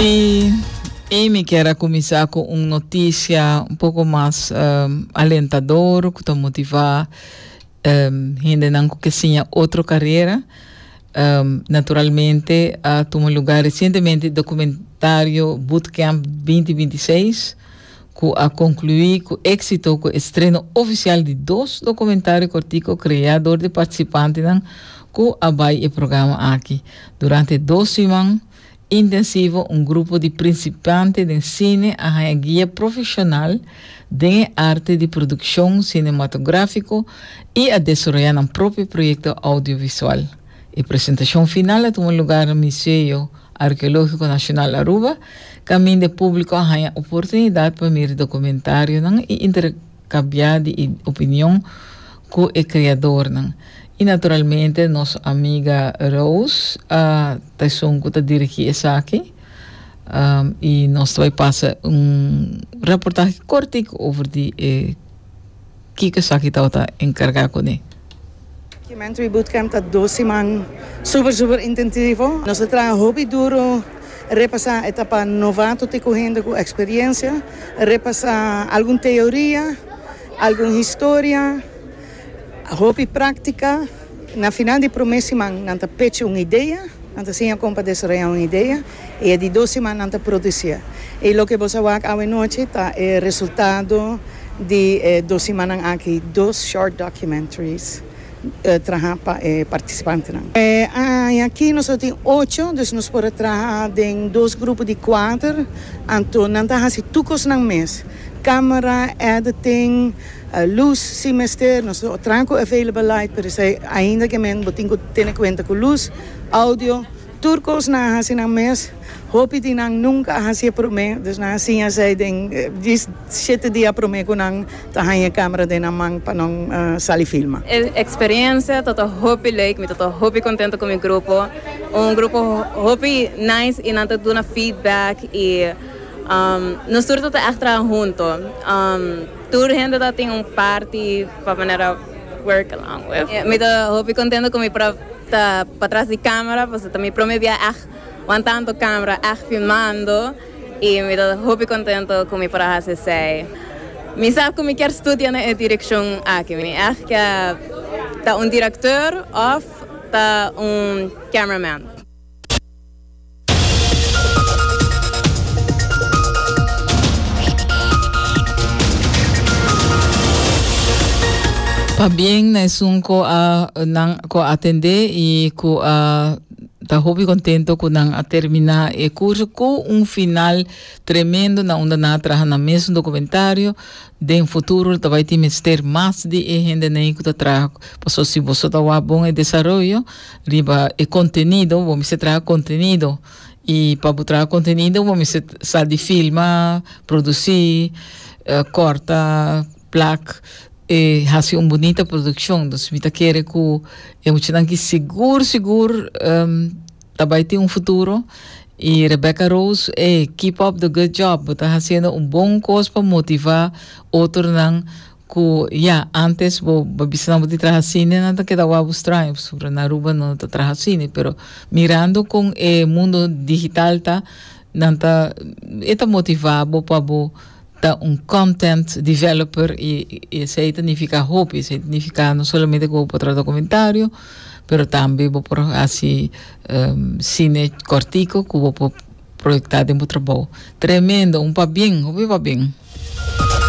Y Amy kier a cuminsa cu un noticia un poco mas um, alentador, cu ta motiva um, hendenan cu ke siña otro carera. Um, naturalmente a tuma lugar recientemente documentario Bootcamp 2026, cu a conclui cu exito cu estreno oficial di dos documentario cortico crea door di participantenan cu a bay e programa aki. Durante dos siman intensivo un grupo di principiante den cine a haña guia profesional den e arte di produccion cinematografico y a desaroya nan propio proyecto audiovisual. E presentacion final a tuma lugar Museo Archeologico Nacional Aruba Caminda público a haña oportunidad pa mira documentarionan y intercabia di e opinion cu e creadornan. Y naturalmente nos amiga Rose a ta esun cu ta dirigi esaki y nos ta bay pasa un reportahe cortico over di e. Kiko esaki tabata encarga cune? Cement Ui Bootcamp ta dos siman super super intentivo. Nos a traha hopi duro repasa etapa novato te cu hende cu experiencia, repasa algun teoria, algun historia, hopi practica. Na final di promé siman nan ta pechi un idea, nan ta siña kon pa desaroyá un idea i e di dos siman nan ta produsié. I loke bos a wak awe nochi ta e resultado di e dos simannan aki dos short documentaries trahá pa e partisipantenan. E aña aki nos lo tin ocho, dus nos por a traha den dos grupo di kuater, anto nan ta hasi tur kosnan mes, camera, editing, Lus si mester, nos lo traha cu available light pero esey ainda que men bo tin cu tene cuenta cu lus, audio, tur cos nan a haci nan mes, hopi di nan nunca a hacié prome, dus nan a siña esey den di shete dia prome cu nan ta haña camera den nan man pa nan sali filma. E experiencia tata hopi leek, mi tata hopi contento cu mi grupo, un grupo hopi nice y nan ta duna feedback y nos tur tata echt traha hunto. Tur hende ta tin un parti pa manera work along with. Mi ta hopi contento cu mi por ta patras di camera pasobra ta mi prome bia echt wan tanto camera echt filmando y mi ta hopi contento cu mi por a haci esey. Mi sab cu mi kier studia na e direccion aki. Mi echt kier ta un director of ta un cameraman. Pabien na esun ku a nan ku a atendé i ku a ta hopi kontento ku nan a terminá e kurso ku un final tremendo na unda nan a traha na mesun dokumentario. Den futuro lo ta bai tin mester mas di e hendenan ei ku ta traha paso si boso ta wak bon e desaroyo, Riba e contenido, bo mester traha contenido. Y pa bo traha contenido bo mester sa di filma, produci, corta, plak, y haci un bunita produccion. Dus mi ta kere cu e muchanan ki sigur sigur ta bay tin un futuro. Y Rebecca Rose, ey, keep up the good job. Bo ta haciendo un bon cos pa motiva otronan. Ku ya, antes bo bo bisa nan bo tin traha sini nan ta keda wou bo straño pasobra na Aruba no ta traha sini pero mirando kon e mundo digital ta nan ta e ta motivá bo pa bo ta un content developer i i esei ta nifiká hopi esei ta nifiká no solamente ku bo por traha dokumentario pero tambe bo por hasi sine kòrtiku ku bo por proyektá den bo trabou. Tremendo un pabien hopi pabien.